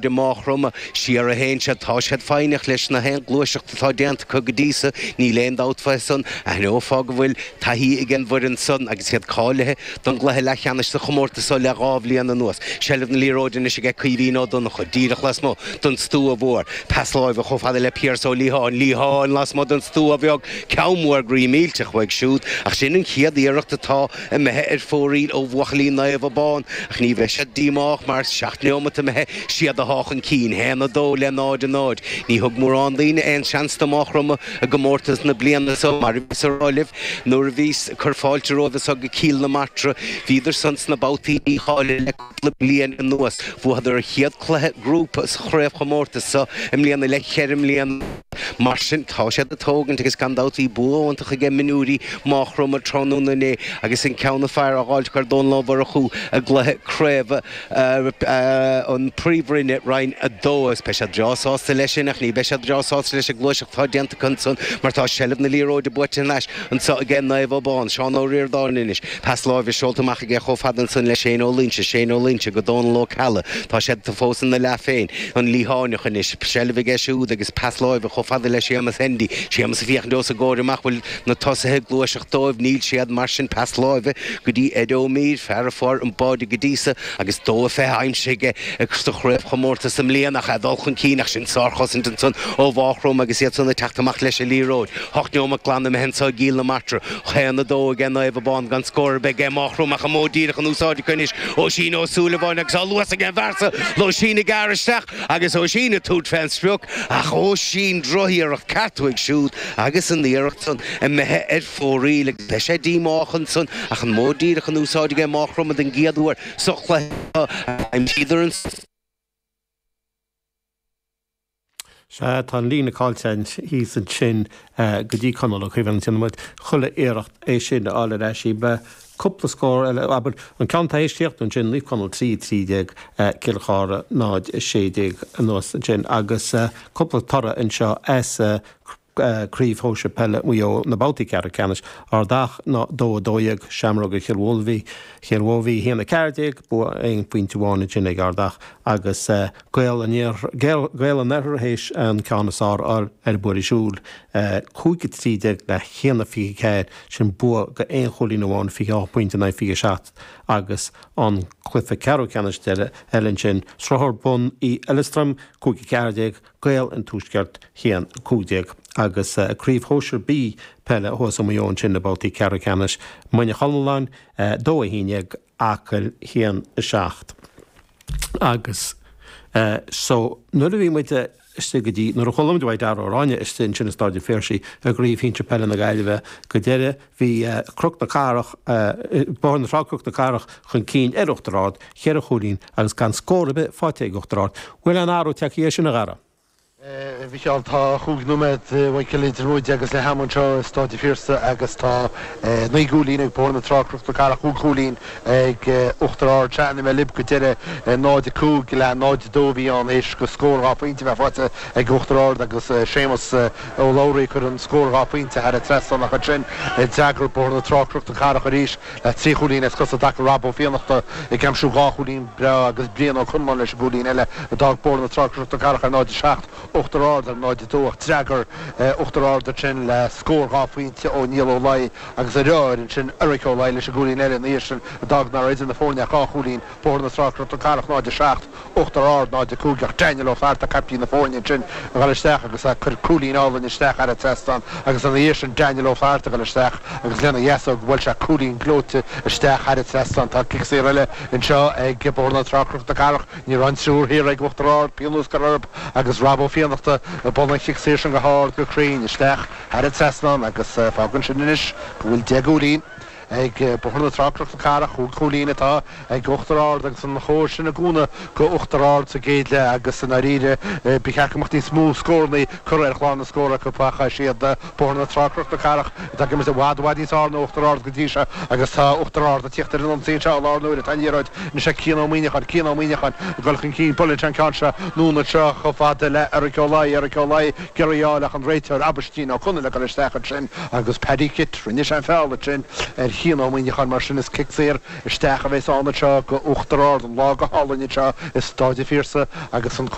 De Má Chromtha siar a théann siad, tá siad foighneach leis na haon ghluaiseacht atá déanta acu go dtí so, níl aon dabht fúithi san, aithneofá go bhfuil taithí ag an bhfoireann san agus iad cáilithe don gcluiche leathcheannais sa chomórtas so le dhá bhliain anuas. Seilbh na liathróide anois aige Caoimhín Ó Donnchadh, díreach lasmuigh don stua mhór, pas láimhe chomh fada le Piaras Ó Liatháin, Liatháin lasmuigh don stua bheag, ceann mór groí millteach uaidh siúd, ach sin an chéad iarracht atá. imithe ar fóraoil ó bhuachaillí Naomh Abán, ach ní bheidh siad díomách mar, seacht neomat imithe, 's iad atá chun cinn, haon a dó le náid a náid. Ní thug mórán daoine aon seans do Máigh Chromtha i gcomórtas na bliana so, mar a bhíos a rá libh, nuair a bhíos ag cur fáilte romhaibh anso go Cill na Martra, bhíodar san sna babhtaí dícháilithe le cúpla bliain anuas. Bhuadar a chéad cluiche grúpa sa chraobhchomórtas seo i mbliana le ceithre mbliana. Mar sin tá siad ag tógaint agus gan dabht bhí bua iontach aige mionúirí Máchromtha tráthnóna inné agus an ceann is fearr a fháilt ar Domhnach Mór acu i gcluiche craobh an Phríomhroinne Roinn 2. Beidh siad breá sásta leis sin ach ní bheidh siad breá sásta leis an gluaiseacht atá déanta acu ansan mar tá seilbh na liathróide buaite anois Anso aige Naomh Abán, Seán Ó Ríordáin anois. Pas láimhe seolta amach aige chomh fada ansan le Shane Ó Loinsigh, Shane Ó Loinsigh go Dónal Ó Ceallaigh. Tá siad fós ina leath féin. An Liatháineach anois. Seilbh aige siúd agus pas láimhe chomh fada le Séamas Hendy. Séamas ag féachaint os a gcomhair amach, bhfuil na tosaithe ag gluaiseacht dóibh. Níl siad mar sin. Pas láimhe go dtí Ed Ó Mír, fear a fuair an báide go dtí so agus dó a fiche aimsithe aige sa chraobhchomórtas i mbliana. Ach é ag dul chun cinn ach sin sárchosaint ansan ó Mháchromtha agus iad san ag teacht amach leis an liathróid. Hocht neomat glan imithe anso i gCill na Martra. Haon a dó aige Naomh Abán gan scór ar bith aige Máchromtha ach an modh díreach in úsáid acu anois, Oisín Ó Súilleabháin agus tá luas aige an bhfear so, Oisín ag gearradh isteach agus Oisín ag tabhairt fé an sprioc ach Oisín drochiarracht ceart uaidh siúd agus an iarracht san imithe ar fóraoil agus beidh sé díomách ansan ach an modh díreach in úsáid aige Máchromtha don gcéad uair sa chluiche seo agus aimsíodar an Sea, tá an líne caillte thíos ansin go dtí Conall Ó Cíobháin. Déanfaidh muid chuile iarracht é sin a fháil ar ais. Cúpla scór eile, abair. An ceann atá théis críochnú ansin, Naomh Conall, 3:13, Cill Chartha, 0:16 anuas ansin. Agus cúpla toradh anseo as. Craobh Shóisir Peile Mhaigh Eo Na babhtaí ceathrú ceannais Ardach 2-12 Seamróga Chill Mhóibhí Chill Mhóibhí 1-14 bua aon phointe amháin ansin ag Ardach agus Gaeil an Gaeil an Oirthir théis an ceann is fearr a fháil ar Bhuiríos Umhaill 5-13 le 1-24 sin bua go aon chúilín amháin 28 pointe in aghaidh 27 agus an cluiche ceathrú ceannais eile ansin Sruthair Bun an Fheileastraim 5-14 Gaeil an Tuaiscirt 1, 15 agus Craobh Shóisir B Peile thuas i Maigh Eo ansin na babhtaí ceathrú ceannais Muine Chonalláin 2, 11, Acaill 1, 7 agus so nuair a bhí muid istigh go dtí, nuair a chuala muid uaidh Dara Ó Ráinne istigh ansin i Stáid an Phiarsaigh i gCraobh Shinsir Peile na Gaillimhe go deireadh. Bhí Cnoc na Cathrach, Bóthar na Trá-Cnoc na Cathrach chun cinn ar Uachtar Ard cheithre chúilín agus gan scór ar bith faighte ag Uachtar Ard. Bhfuil aon athrú tagtha air sin, a Dhara? A Mhicheáil, tá chúig nóiméad fágtha idir muid agus leath am anseo i Stáid an Phiarsaigh agus tá naoi gcúilín ag Bóthar na Trá-Cnoc na Cathrach, chúig chúilín ag Uachtar Ard. Ó chaintigh mé libh go deireadh. 0-5 le 0-2 a bhí ann théis do scór dhá phointe a bheith faighte ag Uachtar Ard agus Séamus Ó Labhraí, ag cur an scór dhá phointe thar an trasnán ach ansin d'fhreagair Bóthar na Trá-Cnoc na Cathrach arís le trí chúilín as cosa i dtaca Rob Ó Fiannachta, ag aimsiú dhá chúilín breá, agus Brian Ó Conláin leis an gcúilín eile, a d'fhág Bóthar na Trá-Cnoc na Cathrach ar 0-7, Uachtar Ard ar 0-2, ach d'fhreagair Uachtar Ard ar sin le scór dhá phointe ó Niall Ó Laoi, agus a dheartháir ansin Eric Ó Laoi leis an gcúilín eile ina dhiaidh sin, a d'fhág nach raibh idir na foirne ach dhá chúilín. Bóthar na Trá-Cnoc na Cathrach 0 7 Uachtar Ard 0 5 Ach Daniel Ó Flatharta caiptín na foirne ansin ag dul isteach agus ag cur cúilín álainn isteach thar an trasnán agus ina dhiaidh sin Daniel Ó Flatharta ag dul isteach agus lena dheasóg bhuail sé cúilín gleoite isteach thar an trasnán Tá cic saor eile anseo ag Bóthar na Trá-Cnoc na Cathrach Ní raibh an triúr thiar ag Uachtar Ard pionós gearrtha orthub agus Rob Ó Fiannachta i mbun an chic saor sin go hard go cruinn isteach thar an trasnán agus fágann sin anois go bhfuil deich gcúilín Ag Bóthar na Trá-Cnoc na Cathrach chúig chúilín atá ag Uachtar Ard agus an chóir sin ag cúnamh go Uachtar Ard sa gcéad leath agus i ndáiríre ba cheart go mbeadh níos mó scórannaí curtha ar chlár na scór acu ach is iad Bóthar na Trá-Cnoc na Cathrach atá ag imirt i bhfad, i bhfad níos fearr ná Uachtar Ard go dtí seo agus tá Uachtar Ard ag tíocht ar an ionsaí anseo i láthair na huaire. Tá an liathróid anois ag Cian Ó Muíneacháin, Cian Ó Muíneacháin ag dul chun cinn, buaileann sé an ceann seo, anonn anseo chomh fada le Eric Ó Laoi, Eric Ó Laoi, Ag iarraidh í a fháil ach an réiteoir Aibhistín Ó Conaill ag dul isteach ansin agus Paddy Kitt, rinne sé an feall ansin ar Chian Ó Muíneacháin, mar sin is cic saor isteach a bheas ann anseo go Uachtar Ard an lá go hálainn anseo i Stáid a' Phiarsaigh agus an